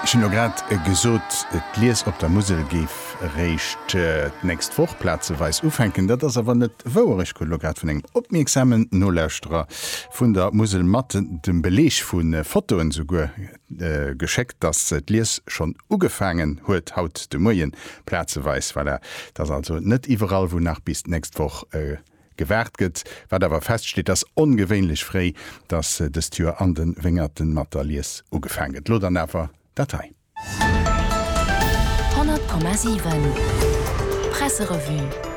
Ech hunn jo grad gesot, d'Lies op der Musel géif eréischt d'nächst Woch plazeweis ufänken. Dat ass awer net wouer. Ech krut elo grad vun engem opmierksamen Nolauschterer vun der Musel mat dem Beleg, vu Fotoen esouguer, geschéckt, dass d'Lies schonn ugefaangen huet haut de Muerjen plazeweis. Voilà, et ass also net iwwerall, wou nach bis d'nächst Woch. Gewaart gëtt. Wat awer feststeet ass ongewéinlech fréi, datt dëst Joer an de Wéngerten mat der Lies ugefaang gëtt. Lo dann awer dat hei. 100,7 Presserevue.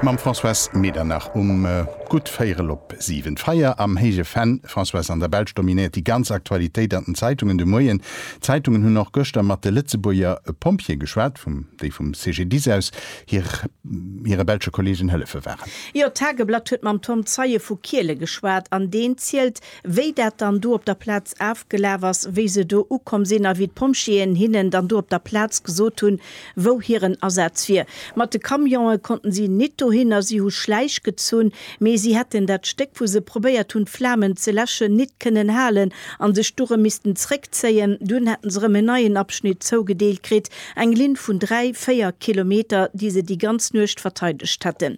Mam Françoise Medernach um gutt véierel op siwen. D'Feier am héije Venn, Françoise, an der Belsch dominéiert déi ganz Aktualitéit an den Zeitungen de Moien. D'Zeitungen hunn och gëschter mat de Lëtzebuerger Pompjeeë geschwat, vum déi vum CGDIS aus hire belsche Kolleegen hëllefe waren. Jo, d'Tageblatt huet mam Tom Zeie vu Kiele geschwat an deen zielt, wéi dat dann do op der Plaz afgelaf ass, wéi se do ukomm sinn a wéi d'Pompjeeën hinnen dann do op der Plaz gesot hunn, wou hiren Asaz wier. Mat de Camionen konnten si nit dohinner, si hu Schläich gezunn, mee si hätten dat Stéck, wou se probéiert hunn d'Flamen ze läschen, nit kënnen halen a sech du rëm missten zréckzéien. Dunn hätten se rëm en neien Abschnitt zougedeelt kritt Eng Linn vun dräi, véier Kilometer, déi se déi ganz Nuecht verteidegt hätten.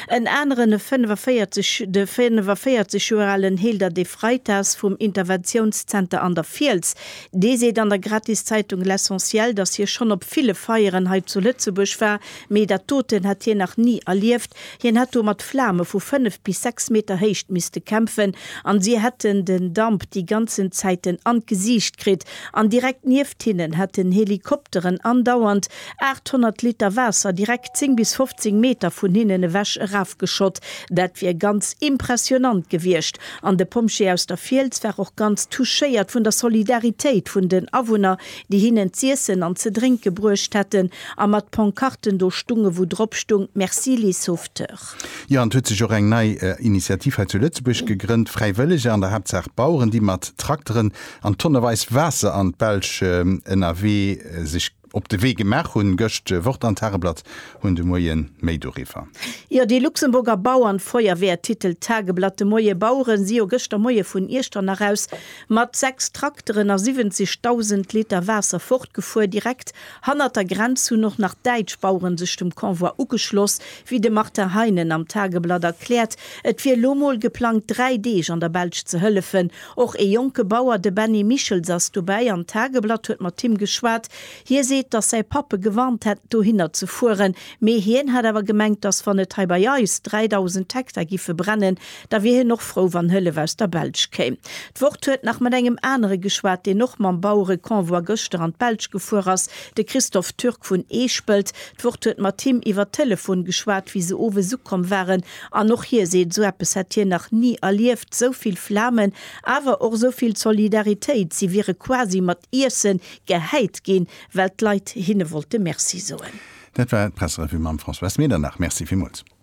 En aneren, e 45, de 45 Joer alen Hilder De Freitas vum Interventiounszenter an der Fiels, dee seet an der Gratiszeitung L'Essentiel, datt hie schonn op ville Feieren hei zu Lëtzebuerg war, Mee dat doten hätt hien nach ni erlieft. Hien hätt do mat Flame vu fënnef bis sechs Meter Héicht misste kämpfen an si hätten den Damp déi ganzen Zäiten an d'Gesiicht kritt. An direkt nieft hinnen hätten Helikopteren andauernd 800 Liter Waasser direkt 10 bis 15 Meter vun hinnen ewech erafgeschott. Dat wier ganz impressionant gewiescht. An de Pompjee aus der Fiels war och ganz touchéiert vun der Solidaritéit vun den Awunner, déi hinnen z'iessen an ze drénke bruecht hätten a mat Ponkarten do stunge wou drop stung Merci les sauveteurs. Jo, an et huet sech och eng nei Initiativ hei zu Lëtzebuerg gegrënnt, Fräiwëlleger, an der Haaptsaach Baueren, déi mat Trakteren an tonneweis Waasser an d'Belsch ënnerwee sech op de Wee gemaach hunn. Gëscht Wort an Tageblatt hunn de Moie méi doriwwer. Jo, déi Luxemburger Bauernfeuerwehr, Titel Tageblatt de Moie, Bauere si jo gëschter Moie vun Iechternach aus Mat 6 Trakteren a 70.000 Liter Waasser fortgefuer. Direkt hannert der Grenz hunn och nach däitsch Baueren sech dem Convoi ugeschloss. Wéi de Martin Heinen am Tageblatt erkläert, et wier elo mol geplangt, dräi Deeg an der Belsch ze hëllefen. Och ee jonke Bauer, de Benny Michels ass dobäi an d'Tageblatt huet mat him geschwat. Hie seet, datt säi Papp e gewarnt hätt, dohinner ze fueren, mee hien hätt awer gemengt, datt wann et hei bei eis 3.000 Hektar giffe brennen, Da wier hien och frou, wann Hëllef aus der Belsch kéim. D'Wort huet nach mat engem anere geschwat, deen och mam Bauereconvoi gëschter an d'Belsch gefuer ass, de Christophe Türk vun Eespelt. D'Wort huet mat him iwwer Telefon geschwat, wéi se owes ukomm waren. An och hie seet, esou eppes hätt hien nach ni erlieft, esou vill Flamen, awer och esou vill Solidaritéit. Si wiere quasi mat Iesse gehäit ginn, well d'Leit hinne wollte Merci soen. Dat war d'Presserevue mam Françoise Medernach. Merci villmools.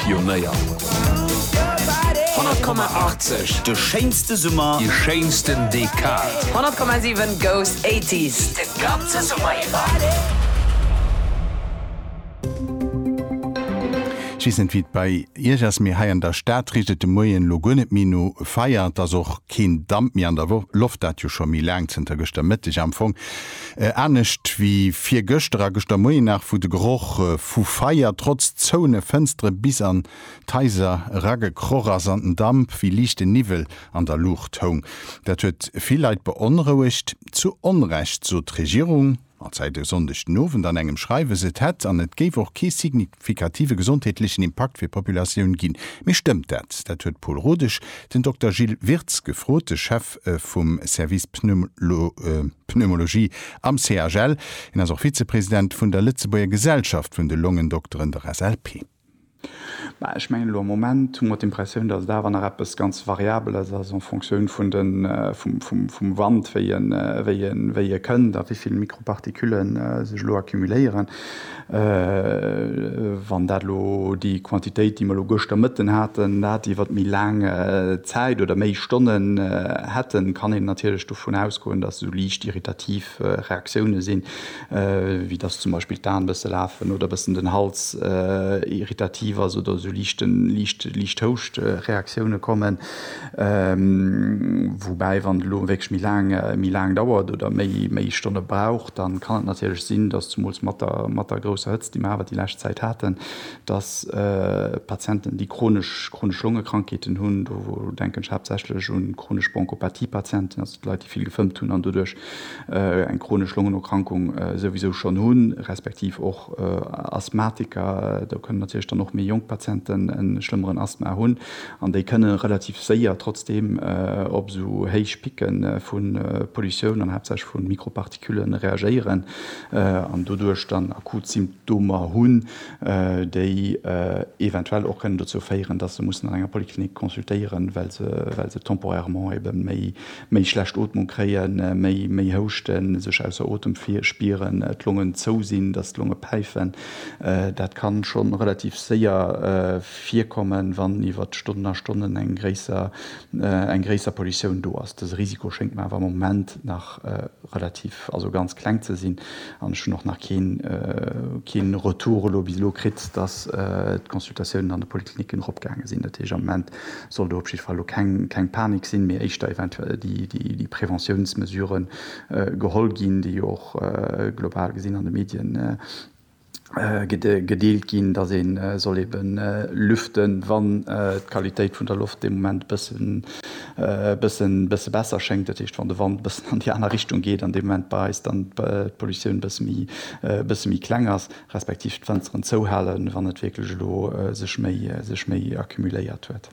Pionéier. 100,80, De schéinste Summer. Déi schéinsten Dekad. 100,7 goes 80s de ganze Summer iwwer. Ech weess net wéi et bei Iech ass, mee hei an der Stad richt et de Moien elo guer net méi no Feier. Et ass och keen Damp méi an der Loft, dat jo scho méi laang, zënter gëschter Mëtteg am Fong. Anescht wéi virgëschter a gëschter Moien nach, wou de Geroch vu Feier trotz zouene Fënstere bis an d'Haiser eragekroch ass an den Damp wéi liichte Niwwel an der Luucht houng. Dat huet vill Leit beonrouegt. Zu Onrecht sot d'Regierung, als säit e Sonndeg den Owend an engem Schreiwes, et hätt an et géif och kee signifikative gesondheetlechen Impakt fir d'Populatioun ginn. Mee stëmmt dat? Dat huet d'Paul Rodesch den Dokter Gilles Wirtz gefrot, de Chef vum Service Pneumologie. Pneumologie am CHL. Hien ass och Vizepresident vun der Lëtzebuerger Gesellschaft vun de Longendokteren, der SLP. Mä ech mengen, elo am Moment hu mer d'Impressioun, datt et awer nach eppes ganz Variabeles ass en Fonctioun vum Wand, wéi e kënnt a wéi vill Mikroparticulle sech elo accumuléieren. Wann dat elo déi Quantitéit, déi mer elo gëschter Mëtten haten, dat iwwert méi laang Zäit oder méi Stonnen hätten, kann een natierlech dovun ausgoen, dass esou liicht irritativ Reaktioune sinn, wéi dass zum Beispill d'An e bësse lafen oder e bëssen den Hals irritativ ass oder esou liicht Houschtreaktioune kommen. Woubäi, wann et elo wierklech méi laang, méi laang dauert oder méi, méi Stonne braucht, da kann et natierlech sinn, dass zumools mat der, mat der grousser Hëtzt, déi mer awer déi lescht Zäit haten, dass Patienten, déi chronesch, chronesch Longekrankheeten hunn, do denken ech haaptsächlech u chronesch Bronchopathie-Patienten, also d'Leit, déi vill gefëmmt hunn an doduerch eng chronesch Longenerkrankung souwisou schonn hunn, respektiv och Asthmatiker, do kënnen natierlech dann och méi jonk Patienten e schlëmmeren Asthma hunn an déi kënne relativ séier trotzdeem op esou héich Picke vu Pollutioun an haaptsächlech vu Mikropartikülle reagéieren an doduerch dann akut Symptomer hunn, déi eventuell och kënnen dozou féieren, dass se mussen an enger Poliklinik consultéieren, well se temporairement ebe méi méi schlecht Ootmung kréien, méi méi houschten, sech ausser Otem spieren, d'Longen zou sinn, dass d'Longe päifen. Dat ka scho relativ séier virkommen, wann iwwert Stonnen a Stonnen eng gréisser eng gréisser Pollutioun do ass. Dëse Risiko schéngt mer awer am Moment nach relativ, also ganz kleng ze sinn an ech hunn och nach keen keen Retour elo bis elo kritt, dass d'Consultatiounen an de Polikliniken eropgaange sinn. Dat heescht, am Moment Soll do op jidde Fall elo keng Panik sinn, mee éischter eventuell déi Preventiounsmesurë geholl ginn, déi jo och global gesinn an de Medien gedeelt ginn, datt ee soll ebe lüften, wann d'Qualitéit vun der Loft dee Moment e bësse besser schéngt, dat heescht wann de Wand e bëssen an déi aner Richtung geet an dee Moment bei eis dann d'Pollutioun e bësse méi kleng ass. Respektiv d'Fënsteren zouhalen, wann et wierklech elo sech méi, sech méi accumuléiert huet.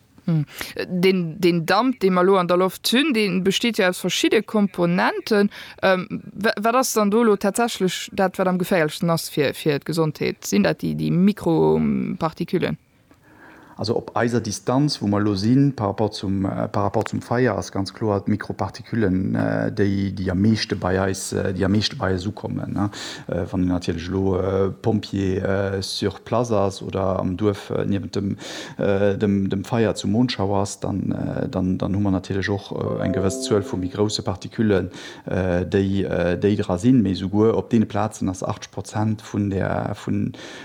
Deen, deen Damp, dee mer elo an der Loft hunn, dee besteet jo aus verschidde Komponenten. Wa, wat ass dann do elo tatsächlech dat, wat am geféierlechsten ass fir, fir d'Gesondheet? Sinn dat déi, déi Mikroparticulen? Also op eiser Distanz, wou mer elo sinn, par rapport zum, par rapport zum Feier, ass ganz kloer d'Mikroparticulen déi, déi am meeschte bei eis, déi am meeschte bei eis ukommen. Wann een natierlech elo Pompjee sur place ass oder am Duerf niewent dem, dem, dem Feier zu Monschau ass, dann, dann, dann hu mer natierlech och eng gewëss Zuel vu méi grousse Particulen, déi, déi dra sinn. Mee souguer op deene Plazen ass 80 Prozent vun der, vun,